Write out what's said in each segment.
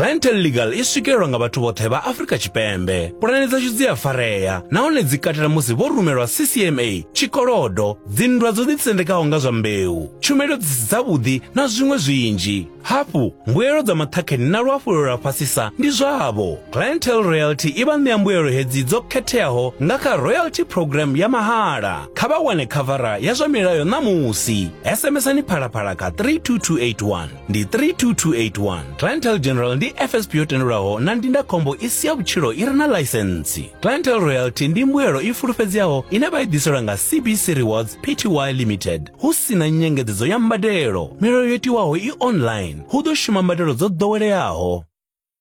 Clientele Legal i swikelelwa nga vhathu vhoṱhe vha Afrika Tshipembe. Pulane dzashu dzi a farea nahone dzi katela musi vho rumelwa CCMA, tshikolodo, dzinndwa dzo ḓisendekaho nga zwa mbeu, tshumelo dzi si dzavhuḓi na zwiṅwe zwinzhi. Hafhu, mbuelo dza maṱhakheni na luhafhulelo lwa fhasisa ndi zwavho. Clientele Royalty i vha ṋea mbuelo hedzi dzo khetheaho nga kha Royalty Program ya mahala. Kha vha wane khavara ya zwa milayo ṋamusi. SMSani phalaphala kha 32281 ndi 32281. Clientele General ndi FSP yo tendelwaho na ndindakhombo i si ya vhutshilo i re na ḽaisentsi. Clientele Royalty ndi mbuelo i fulufhedzeaho ine vha i ḓiselwa nga CBC Rewards Pty Limited hu si na nyengedzedzo ya mbadelo. Milayo yo tiwaho i online. Hu ḓo shuma mbadelo dzo ḓoweleaho.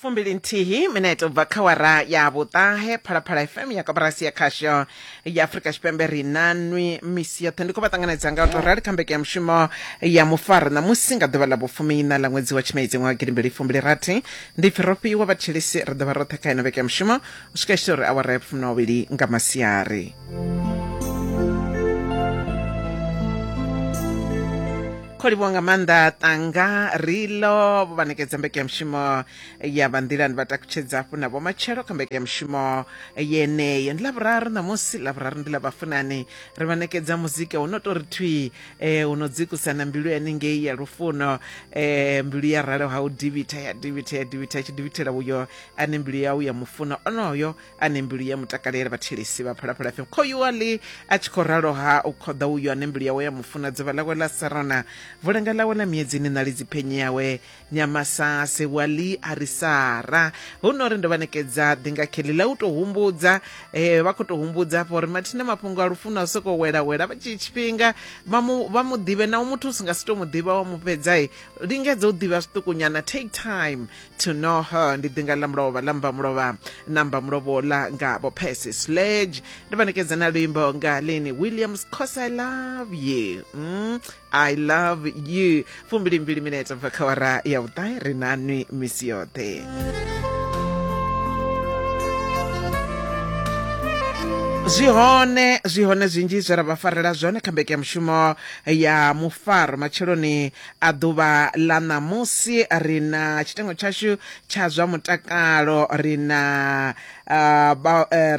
fumbili nthihi minete ubva kha wara ya vhuṱahe phalaphala fm ya koporasi ya khasho ya afurika tshipembe ri na nwi misi yoṱhe ndi khou vha ṱanganedza nga u tou rali kha mbeke ya mushumo ya mufaro ṋamusi nga ḓuvha ḽa vhufumiina ḽa ṅwedzi wa tshimedzi ṅwaha gidimbili fumbili rathi ndi pfi ro fhiwa vhatshilisi ri ḓo vha roṱhe kha ino vheke ya mushumo u swika tshito uri awara ya vhufumi na wavhili nga masiari kho livhuwa nga maanḓa tanga rilo vha ṋekedza mbekanyamushumo ya vhanḓilani vha takutshedza hafhu na vhomatshelo kha mbekanyamushumo yeneyo ndi lavhuraru ṋamusi lavhuraru ndi ḽa vhafunani ri vha ṋekedza muzika hu no tou ri thwi um eh, hu no dzikusa na mbilu yanengei ya lufuno um mbilu ya ralo ha u divitha ya divitha ya divitha ya tshi divithela uyo ane mbilu yau ya mufuno onoyo ane mbilu ya mutakalela vhathelesi vha phalaphala fm khoyuwali a tshi khou ralo ha u khoḓa uyu ane mbilu yawe ya mufuna dzuvha lawe la sarana vulanga lawe la miedzini na lidzi phenye yawe nyamasase wali a ri sara hu no ri ndo vha nekedza ḓinga kheli la u tou humbudza um vha khou tou humbudza afho uri mathina mafhungo a lufuno a sokou welawela vha tshi tshifhinga vha mu vha mu ḓivhe na u muthu u si nga si tou mu ḓivha wa mu fhedza lingedza u ḓivha zwiṱukunyana take time to know her ndi ḓinga ḽa mulovha ḽa mba mulovha na mba mulovha ola nga vho percy sledge ndi vha nekedza na luimbo nga lini williams cos i love you mm, i love you fumbilimbili minete bva kha wara ya vhuṱahe ri na nwi misi yoṱhe zwi hone zwi hone zwinzhi zwe ra vha farela zwone kha mbekeyamushumo ya mufaro matsheloni A Ḓuvha ḽa ṋamusi ri na tshitengo tshashu tsha zwa mutakalo, ri na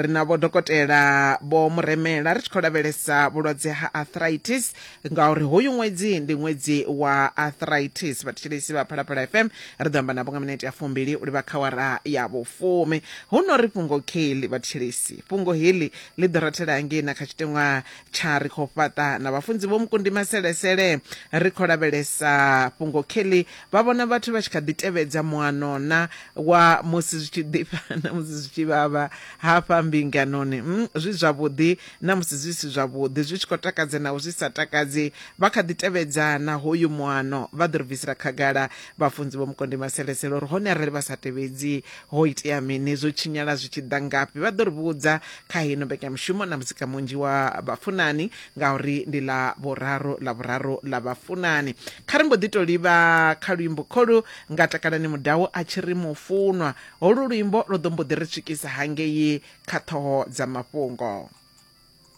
ri na vho dokotela vho muremela ri tshi khou lavhelesa vhulwadze ha arthritis ngauri hoyu ṅwedzi ndi ṅwedzi wa arthritis. Vhathetshelesi vha Phalaphala FM ri ḓo amba navho nga minete ya fumbili u livha kha awara ya vhufumi. Hu no ri fhungo kheḽi vhathetshelesi, fhungo heḽi ḽi ḓo rathela hangei na kha tshiteṅwa Tsha ri khou fhaṱa na vhafunzi vho Mukundi Maselesele. Ri khou lavhelesa fhungo Kelly vha vhona vhathu vha tshi kha ḓi tevhedza muanona wa musi zwi tshi ḓifha na musi zwi tshi vhavha hafha mbinganoni. Umm zwi zwavhuḓi na musi zwi si zwavhuḓi, zwi tshi khou takadza naho zwi sa takadzi. Vha kha ḓi tevhedza na hoyu muano. Vha ḓo ri bvisela khagala vhafunzi vho Mukundi Maselesele uri hone arali vha sa tevhedzi ho itea mini, zwo tshinyala zwi tshi ḓa ngafhi. Vha ḓo ri vhudza kha hino mbekanyamushumo na muzika munzhi wa vhafunani ngauri ndi ḽa vhuraru ḽa vhuraru ḽa vhafunani kha ri mbo ḓi to livha kha luimbo kholu nga takalani mudau a tshi ri mufunwa holu luimbo lwo ḓo mbo ḓi ri swikisa hangei kha ṱhoho dza mafhungo